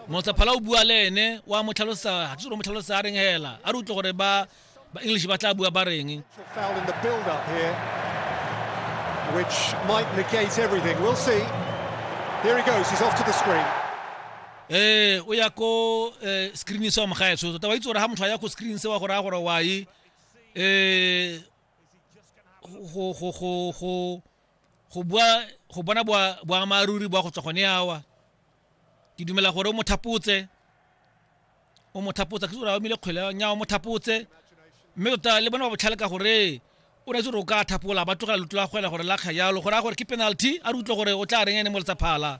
motlaphala o bua le ene wa mo tlhalosa ga tsoro mo tlhalosa a reng hela a re utlwe gore ba ba english ba tla bua ba reng which might negate everything we'll see here he goes he's off to the screen eh o ya ko eh, screen se wa mogaetso tota wa itse gore ga motho a ya ko screen se wa gore a gore wa e eh go go go go go bua go bona boammaaruri bwa go tswa gone awa ke dumela gore o mo thapotse o mo thapotsa ke gore a omile kgwele nya o mo thapotse mme tota le bona ba botlhale ka gore o ne gore o ka thapola ba tlogela lotlo la gore la kga gore a gore ke penalty a re utlwe gore o tla reng ene mo letsaphala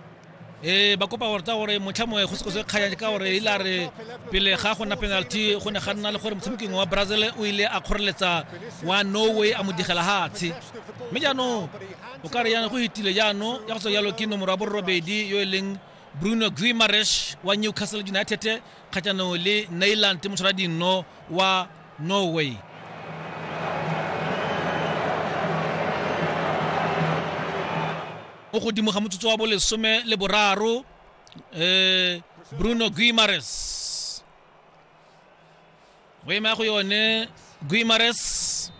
e ba kopa gore tsa gore motlha moe go sekose kganya ka gore ile a re pele ga go nna penalty go ne ga nna le gore motshamekingwe wa brazil o ile a kgoreletsa wa norway a mo digela gatshe mme jaanong o ka re yana go fetile jaanong ya go tswa jalo ke nomoro ya borobedi yo e leng bruno grimaresh wa newcastle united kgatlhanong le nailand motshwara dinno wa norway mo godimo ga motsotso wa bolesome le boraro um bruno guimares go ema go yone guimares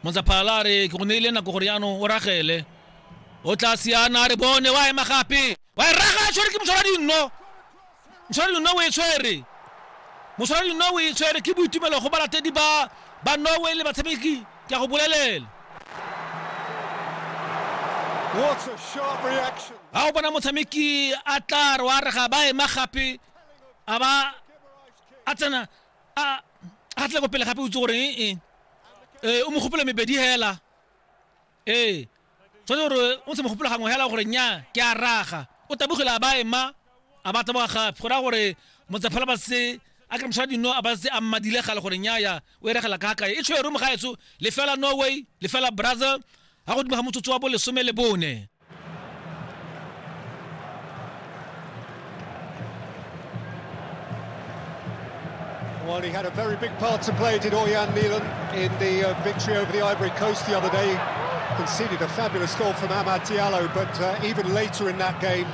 montsaphala a re ke go neile nako gore yaanong o ragele o tla siana a re bone wa ema gape wa e raga a tshwere ke moshwara dinno Moswara dinawa o e tshwere. Moswara dinawa o e tshwere ke boitumelo go balatedi ba ba Norway le batshameki ke a go bolelela. Ga o bona motshameki a tla re wa re ga ba ema gape a ba a tsena a a tle go pele gape o itse gore ee o mo gopela mebedi hela ee tshwanetse gore o ntse mogopolo gangwe hela gore nya ke a raga o tabogile a ba ema a ba taboga gape go raya gore motsephela ba se a kry mosha dino a ba se a mmadile gale gore nyaya o e regela ka kae e tshwere mo gaetso lefela norway lefela brazil ga godimo ga motsotso wa bo lesome le bone Well, he had a very big part to play, did Orjan Milan, in the uh, victory over the Ivory Coast the other day. Conceded a fabulous goal from Amad Diallo, but uh, even later in that game,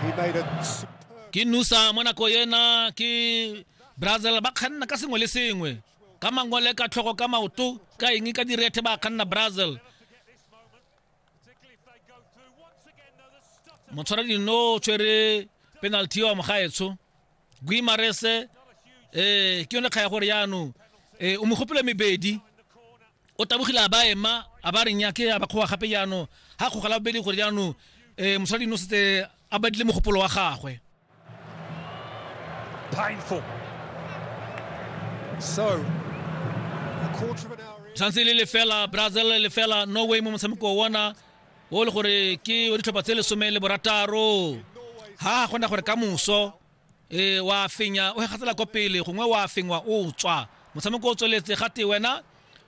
he made a superb... ke nusa mo nako ena ke brazil ba kganna ka sengwe le sengwe ka mangwele ka tlhogo ka maoto ka eng ka direthe ba kganna brazil motshwara dino o tshwere penalty wa mogaetsho guimarese eh ke yone kga ya gore yaanong eh o mogopolo mebedi o tabogile a ba ema a ba reng yake a ba kgowa gape yaanong ga kgogala bobedi gore yaanong um mosadi no setse a badile mogopolo wa gagwe painful so tshwanetse le lefela brazil lefela norway mo motshameko wa ona o le gore ke o ditlhopha tse lesome le borataro ha a kgona gore ka moso ee wa fenya o gatsela kwa pele gongwe wa fengwa o tswa motshameko o tsweletse gate wena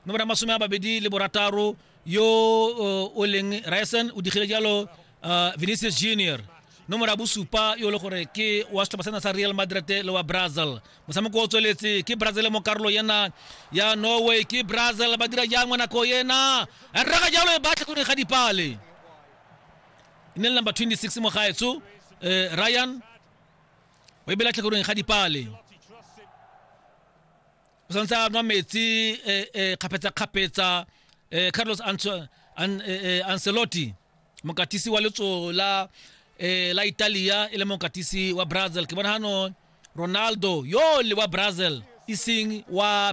nomoro ya masome a babedi le borataro yo uh, o leng ryson o digile jalo uh, vinicius junior nomoro ya bosupa yo e le gore ke wa setlhopha sena sa real madrid le wa brazil motshameko o tsweletse ke brazil mo karolo yena ya norway ke brazil ba dira jang mo nako yena rraga jalo e batlhe go ne ga dipale ne le number 26 mo gaetso eh, ryan o e bela tlhakoreng ga dipale o santse a nwa metsi eh, eh, kgapetsa-kgapetsa eh, carlos ancelotti mokatisi wa letso la la italia e le mokatisi wa brazil ke bona gano ronaldo yo le wa brazil e seng wa